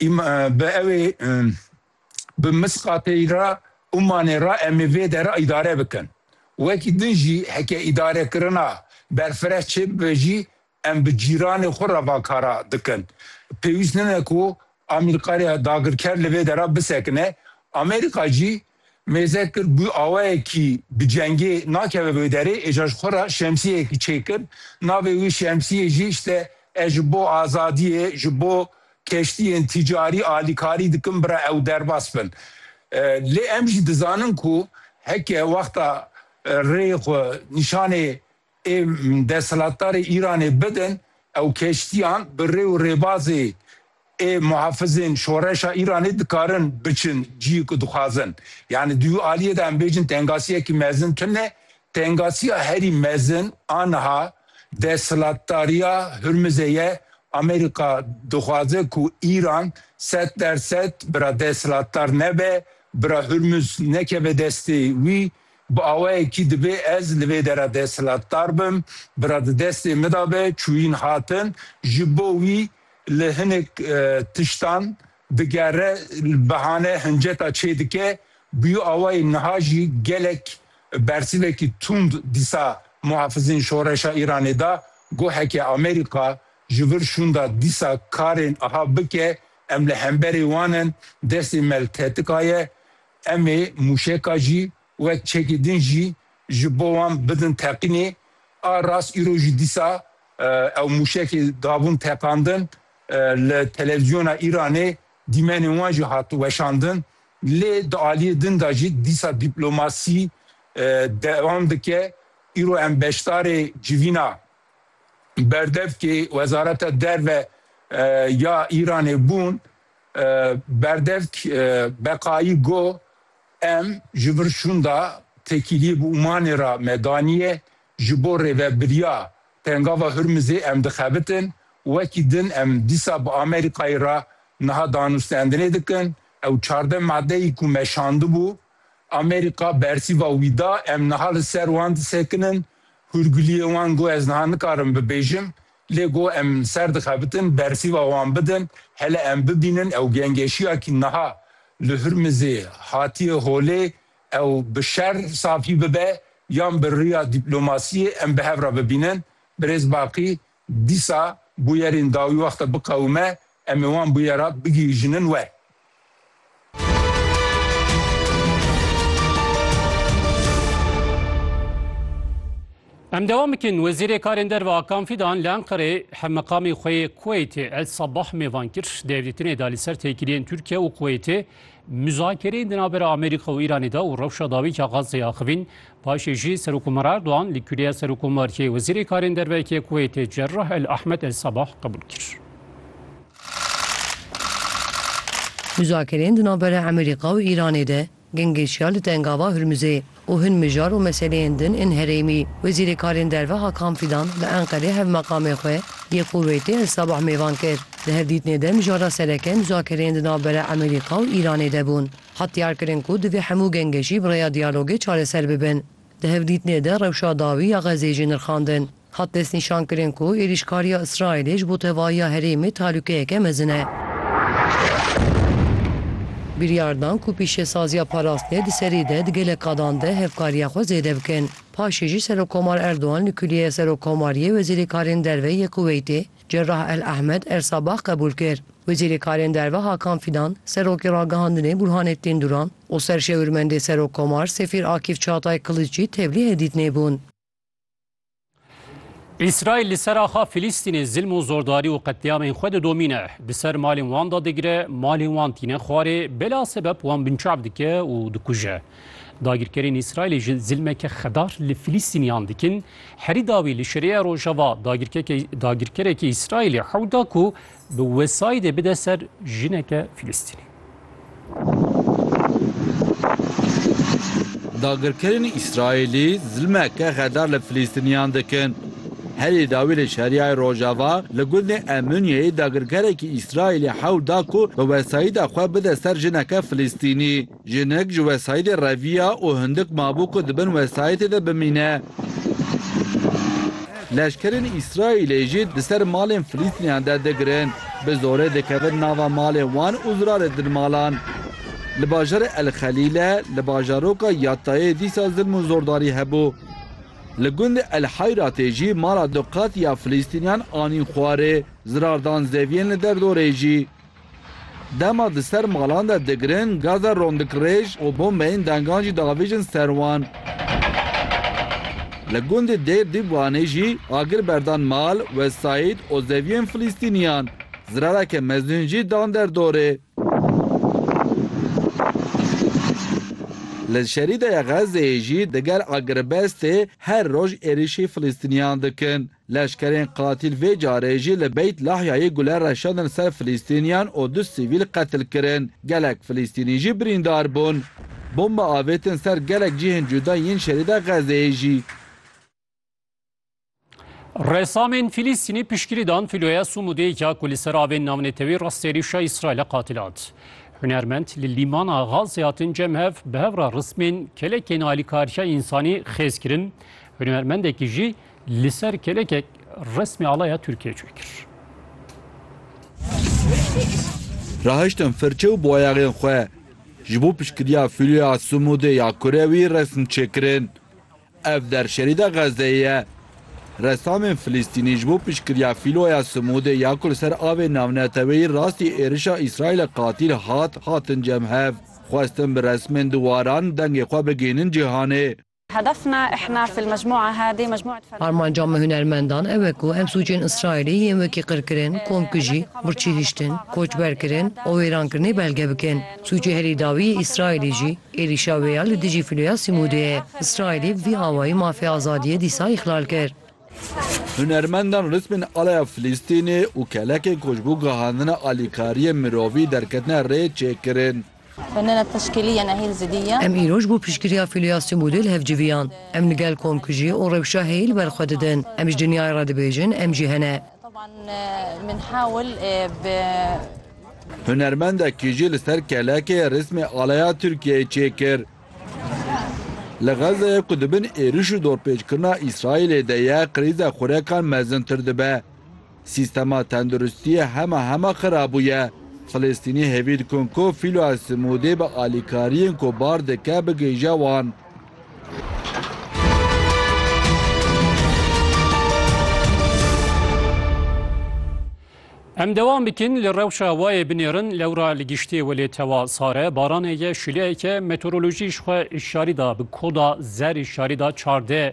Îma bi ewê bi Misqatê ra Ummanê ra em ê vê dera îdare bikin. Wekî din jî heke îdarekirina berfireh çê bibe jî em bi cîranê xwe ra va kara dikin. Pêwîst nine ku Amîrqarê dagirker li vê dera bisekine. Amerîka jî mêze kir bû awayekî bi cengê nakeve wê derê êja ji xwe re şemsiyeyekî çêkir navê wî şemsiyê jî işte ez ji bo azadiyê ji bo keştiyên tîcarî alîkarî dikim bira ew derbas bin lê em jî dizanin ku heke wexta rêyê xwe nîşanê ê desthilatdarê Îranê bidin ew keştiyan bi rê û rêbazê ê muhafizên şoreşa Îranê dikarin biçin ciyê ku dixwazin. Yanî di wî aliyê de em bêjin tengasiyekî mezin tune. Tengasiya herî mezin a niha desthilatdariya Hurmizê ye. Amerîka dixwaze ku Îran sed der sed bira desthilatdar nebe, bira Hurmiz nekeve destê wî. Bi awayekî divê ez li vê dera desthilatdar bim, bira di destê min de be, çûyîn hatin, ji bo wî li hinek tiştan digere, bihane hinceta çê dike, bi yu awayê niha jî gelek bersivekî tund dîsa muhafizên şoreşa Îranê da, got heke Amerîka ji vir şûnda dîsa karên iha bike, em li hemberê wan in, destê me li tetika ye, Em ê mûşeka jî wek çekê din jî ji bo wan bidin teqînê. A rast îro jî dîsa ew mûşekê dabûn teqandin. Li televîzyona Îranê dîmenên wan jî hat weşandin. Lê di aliyê din de jî dîsa dîplomasî dewam dike. Îro em beşdarê civîna berdevkê Wezareta Derve ya Îranê bûn. Berdevk Beqayî got, Em ji vir şûnda tekîliyê bi Ûmanê re me daniye, ji bo rêvebiriya Pengava Hurmizê em dixebitin, wekî din em dîsa bi Amerîkayê re niha danûstendinê dikin, ew çardeh madeyî ku me şandibû, Amerîka bersîva wî da, em niha li ser wan disekinin, hûrguliyê wan got ez niha nikarim bibêjim, Lê ku em ser dixebitin bersîva wan bidin, hele em bibînin ew gengeşiya ku niha li Hurmizê hatiye holê ew bi şer safî bibe yan bi riya dîplomasiyê em bi hev re bibînin. Birêz Baqî, Dîsa bûyerên dawî wexta biqewime em ê wan bûyerat bigihîjinin we. Em devam bikin Wezîrê Karên Derve Akan Fîdan li Enqerê hemmeqamê xwe yê Kuweytê El Sabah mêvan kir. Di hevdîtinê de li ser têkiliyên Tirkiye û Kuweytê, muzakereyên di navbera Amerîka û Îranê de û rewşa dawî ya Gazeyê axivîn Paşê jî Serokkomarê Erdogan li Kuleya Serokkomariyê Wezîrê Karên Dervekê Kuweytê Cerrah El Ahmed El Sabah qebûl kir. Muzakerên di navbera Emerîka û Îranê de gind geşiya li Tengava Hurmizê û hin mijar û meseleyên din ên herêmî. Wezîrê Karên Derve Hakan Fidan li Enqerê hevmeqamê xwe yê Kuweytê El Sabah mêvan kir. Di hevdîtinê de mijara sereke muzakereyên di navbera Emerîka û Îranê de bûn. Hat diyarkirin ku divê hemû genge jî bi rêya diyalogê çareser bibin. Di hevdîtinê de rewşa dawî ya Xezê jî nirxandin. Hat destnîşankirin ku êrîşkariya Îsraîlê ji bo tevahiya herêmê tehlûkeyeke mezin e. Biryar dan ku pîşesaziya parastinê di serî de di gelek qadan de hevkariya xwe zêde bikin. Paşê jî Serokkomar Erdogan li Kulîyeya Serokkomariyê Wezîrê Karên Derve yê Kuweîtê Cerrah El Ahmed Ersabax qebûl kir. Wezîrêkarên Derve Hakan Fîdan, Serokê Ragihandinê Burhanettin Duran û Serşewirmendê Serokkomar Sefîr Akîf Çağtay Kılıç jî tevlî hêdît nêbûn. Îsraîl li ser axa Filîstînê zilm û zordarî û qetlîamên xwe didomîne. Di ser malên wan de digire, malên wan tîne xwarê, bela sebep wan binçav dike û dikuje. Dagirkerên Îsraîlê ji zilmeke xedar li Filîstîniyan dikin. Herî dawî li Şirêya Rojava dagirkerekî Îsraîlê hewl da ku bi wesayîdê bide ser jineke Filîstînî. Dagirkerên Îsraîlî zilmeke xedar li Filîstîniyan dikin. Herî dawî li Şerîyayê Rojava li gundê Emûniyeyê dagirkerekî Îsraîlê hewl da ku bi wesayîda xwe bide ser jineke Filîstînî. Jinik ji wesayîtê re viya û hindik mabû ku di bin wesayîtê de bimîne. Leşkerên Îsraîlê jî di ser malên Filîstîniyan der digirin, bi zorê dikevin nava malên wan û zirarêdin malan. Li bajarê El Xelîle li bajaroka Yattayê dîsa zilm û zordarî hebû. Li gundê El Heyratê jî mala du qat ya Filîstîniyan anîn xwarê, zirar dan zeviyên li derdorê jî. Dema di ser malan de digirin, gaza rondikirêj û bombeyên dangan jî diavêjin ser wan. Li gundê Dêr Dîbwanê jî agir berdan mal, wesayît û zeviyên Filîstîniyan. Zirareke mezin jî dan der dorê. Li Şerîdeya Xezzeyê jî digel agiribestê her roj êrîşî Filîstîniyan dikin. Leşkerên qatîl vê carê jî li Beyt Lahyayê gule reşandin ser Filîstîniyan û du sivîl qetil kirin. Gelek Filîstînî jî birîndar bûn. Bombe avêtin ser gelek cihên cuda yên şerîda Xezeyê jî. Resamên Filîstînî piştgirî dan fîloya Sumûdê ya ku li ser avên navnetewîrast êrîşa Îsraîlê qatil hat. Hunermend li lîmana Xazê hatin cem hev bi hev re rismên kelekên alîkariya însanî xêz kirin. Hunermendekî jî Li ser kelekek resmê alaya Tirkiyê çê kir. Rahiştim firçe û boyaxên xwe. Ji bo piştgiriya fîloya Sumûdê ya kurê wî resm çêkirin. Ev der şerîda Xezzeyê ye. Ressamên Filîstînî ji bo piştgiriya fîloya Sumûdê ya ku li ser avê navneteweyî rastî êrişa Îsraîlê qatîl hat, hatin cem hev. Xwestin bi resmên di waran dengê xwe bigihînin cîhanê. Armanca me hunermendan ew e ku em sûcên Îsraîlî yên wekî qirkirin, komkujî, birçî hiştin, koçberkirin û wêrankirinê belge bikin. Sûcê herî dawî yê Îsraîlî jî êrîşa wê ya li dijî filoya Sîmûdê ye. Îsraîlî bi vî awayî mafê azadiyê dîsa îxlal kir. Hunermendan ritmên alaya Filistînê û kelekên ku ji bo gihandina alîkariyên mirovî derketine rê çêkirin. Em îroj bo piştgiriya fîliyasyon bû dê li hev civiyan. Em li gel komkujî û rewşa heyî li ber xwe didin. Em ji dinyayê re dibêjin em jî hene. Hunermendekî jî li ser kelekê rîsmê alaya Tirkiyeyê çêkir. Li Xezzeyê ku di bin êriş û dorpêçkirina Îsraîlê de ye, krîza xurekan mezintir dibe. Sîstema tenduristiyê hema hema xira bûye. Filistînî hêvî dikin ku Fîlo El Simûdî bi alîkariyên ku bar dike bigihîje wan. Em dewam bikin li rewşa wayê binêrin lewra li giştê welê tewa sare baranê ye şileyeke meteorolojî ji xwe şarî da bi koda zer şarî da çardeh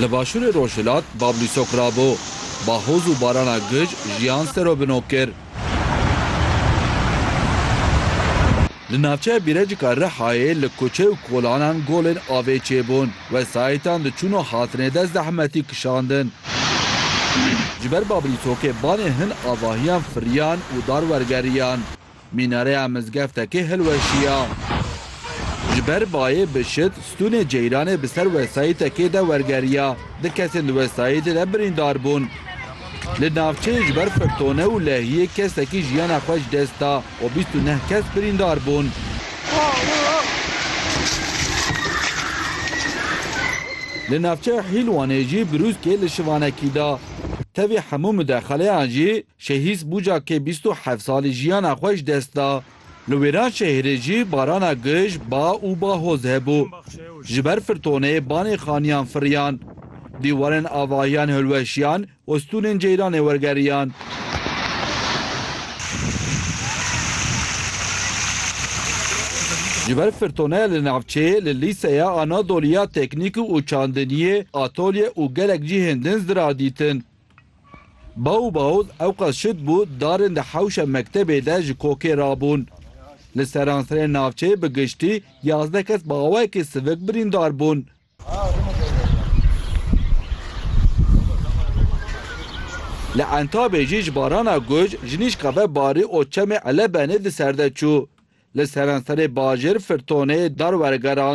Li başûrê rojhilat Bablî sokra bû. Bahoz û barana gij jiyan ser û bino kir. Li navçeya Bîrecika Rihayê li kuçe û kolanan golên avê çêbûn. Wesayîtan diçûn û hatine dest zehmetî kişandin. Ji ber Bablî sokê banê hin avahiyan firiyan û dar wergeriyan. Mînareya mizgeftekê hilweşiya. Ji ber bayê bi şit stûnê ceyranê bi ser wesayîtekê de wergeriya. Du kesên di wesayîtê de birîndar bûn. Li navçeyê ji ber firtone û lehiyê kesekî jiyana xwe ji dest da û bîst û neh kes birîndar bûn. Li navçeya Hîlwanê jî brûskê li şivanekî da. Tevî hemû mudexeleyan jî Şehîs Bûca ke bîst û heft salî jiyana xwe ji dest da. Li wêran şehirê jî barana gij, ba û bahoz hebû. Ji ber firtonê banê xaniyan firiyan. Dîwarên avahiyan hilweşiyan û stûnên ceyranê wergeriyan. Ji ber firtonê li navçeyê li Lîseya Anadolî ya Teknîk û Çandiniyê atolye û gelek cihên din zirar dîtin. Baw û baoz ewqas şit bû darên di hewşa mektebê de ji kokê rabûn. Li seranserê navçeyê bi giştî yazdeh kes bi awayekî sivik birîndar bûn. Li Entabê jî ji barana guj jinîşka ve barî û çemê Elebenê di ser de çû. Li seranserê bajêr firtonê dar wergerand.